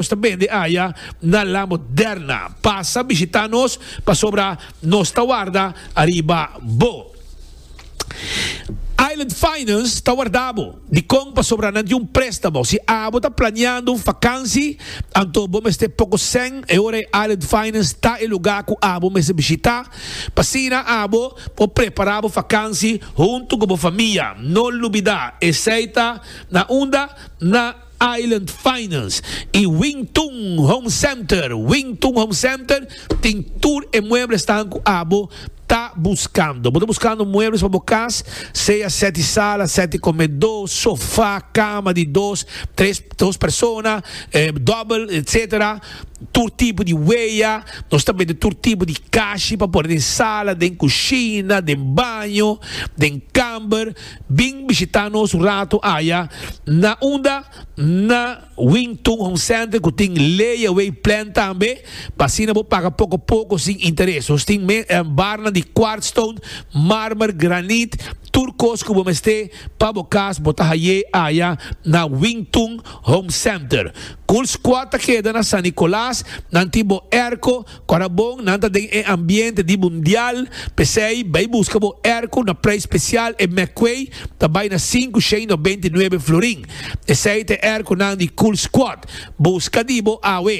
Nos ta bende aya na La Moderna. Pasa bishita nos pasobra nos ta warda ariba bo. Island Finance ta warda bo. Dikon? Pasobra nan tin un prestamo. Si abo ta planeando un fakansi, anto bo mester poko sèn e ora e Island Finance ta e lugá ku abo mester bishita. Asina abo por prepará bo fakansi huntu ku bo famia. No lubidá, esei ta na unda na. Island Finance y Wing Tun Home Center, Wing Tun Home Center tin tur e mueblesnan cu abo ta buscando. Bo ta buscando muebles pa bo cas, sea sete sala, sete comedo, sofa, cama di dos, tres, dos persona, double, etc. Tur tipo di wea, nos ta bende tur tipo di cashi pa pone den sala, den cushina, den baño, den camber. Bin bishitá nos un ratu aya na unda na Wing Tun Home Center ku tin layaway plan tambe pa asina bo paga poko poko sin interes. Nos tin barnan di quartz stone, marmer, granit, tur kos ku bo mester pa bo kas bo ta hay'é aya na Wing Tun Home Center. Cool Squad ta keda na San Nicolas, nan tin bo airco, Ora bon nan ta den e ambiente di mundial, p'esei bai buska bo erko na prei spesial e McQuay ta bai na sinku shei no beinti nuebe florin. Esei ta e erkonan di Cool Squad. Buska di bo awe.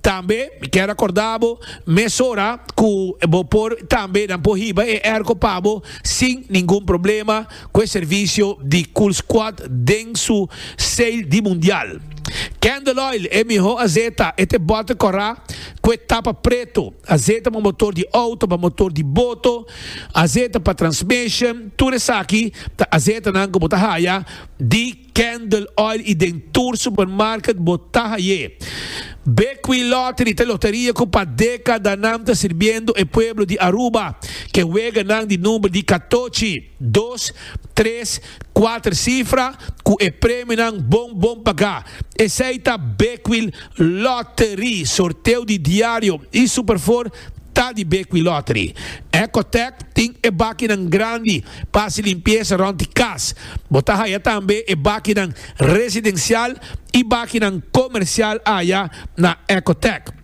Tambe mi kier akorda bo mesora ku bo por tambe nan por hiba e erko pa bo sin ningun problema. cu e servicio di Cool Squad den su sale di Mundial. Candle Oil, e miho azeta, e te bote cora cu e tapa preto, azeta pa motor di auto, pa motor di boto, azeta pa transmission, tur esaki ta azetanan cu bo ta haya di. Candle Oil y den tur supermarket bo ta haye. Bekwee Lottery ta loteria cu pa decadanan ta sirbiendo e pueblo di Aruba ke weganan di number di catochi, dos, tres, cuater cifra cu e premionan bon bon paga. Esey ta Bekwee Lottery. Sorteo di diario y Superfour ta di Bekwee Lottery. Ecotech tin e bakinan grandi. Pa hasi limpiesa rond di kas. Bo ta haya tambe e bakinan residensial i bakinan komersial aya na Ecotec.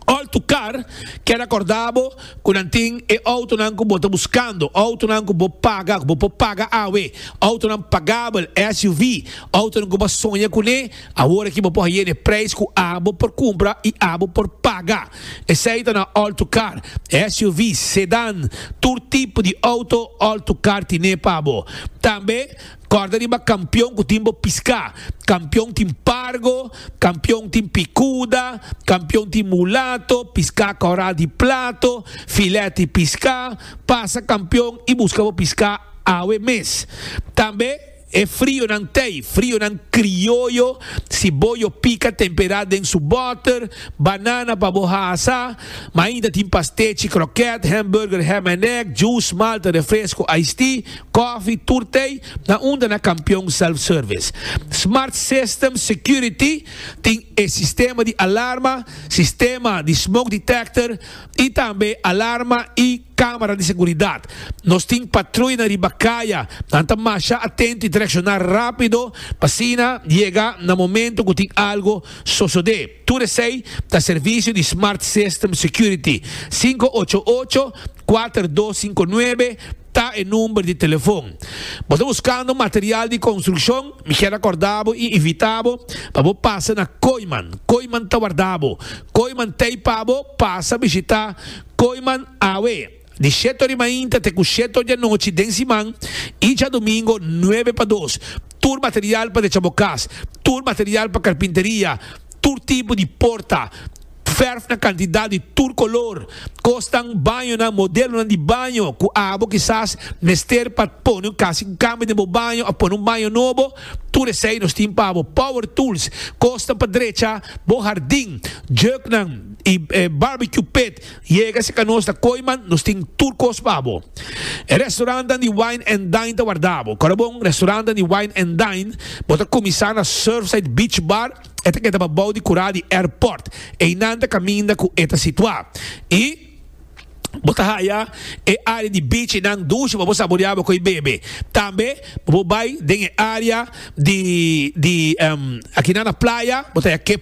Òl tu kar, keda kordá bo ku nan tin e outonan ku bo ta buskando, outonan ku bo paga, ku bo por paga awe, outonan pagabel, SUV, outonan ku bo a soña kuné. Awor aki bo por haye n'e prijs cu abo por cumpra y abo por paga. Esey ta na all-to-car, SUV's, sedan, tur tipo di auto all-to-car tine pa bo. Tambe corda riba campeon cu tin bo pisca. Campeon tin pargo, campeon tin picuda, campeon tin mulato, pisca coral di plato, filet di pisca. Pasa campeon y busca bo pisca awe mes. Tambe. E frionan tei, frionan krioyo, si bo yo pika tempera den su boter, banana pa bo hasa, ma ainda tin pastechi, kroket, hamburger, ham and egg, juice, malta, refresco, iced tea, kofi, tur tei, na unda na Kampion Self Service. Smart System Security tin e sistema di alarma, sistema di smoke detector y tambe alarma y. Camera di seguridad. Nos tin patruina riba caya, nan ta masha atento y ta reacciona rapido pa asina yega na momento cu tin algo sosode. Tur esey ta servicio di Smart System Security. Sinku ocho ocho, kuater dos sinku nuebe ta e number di telefon. Bo ta buscando material di construccion? Mi kier acorda bo y invita bo pa bo pasa na Kooiman. Kooiman ta warda bo. Kooiman ta y pa bo pasa bishita. Koiman awe, di sheto di mainta te ku sheto di anochi den siman i djadumingu nuebe pa dos. Tur material pa decha bo kas, tur material pa karpinteria, tur tipo di porta, fèrf na kantidat di tur kolor, kosnan, bañonan, modelonan di baño ku abo kisas mester pa pone un kasi kambio den bo baño òf pone un baño nobo. Tur esei nos tin pa bo, power tools, kosnan pa drecha bo hardin, juknan i barbecue pit. Yega si ka nos na Koiman, nos tin tur kos pa bo. E restaurantnan di wine and dine ta warda bo. Korabon, restaurantnan di wine and dine, bo ta kuminsá na Surfside Beach Bar, e ta keda pa bou di kura di airport. Einan ta kaminda ku e ta situá. I. Bo ta haya e área di bichinan dushi pa bo saboreá bo ku e bebe. Tambe bo por bai den e área di di akinan na playa, bo ta haya kep.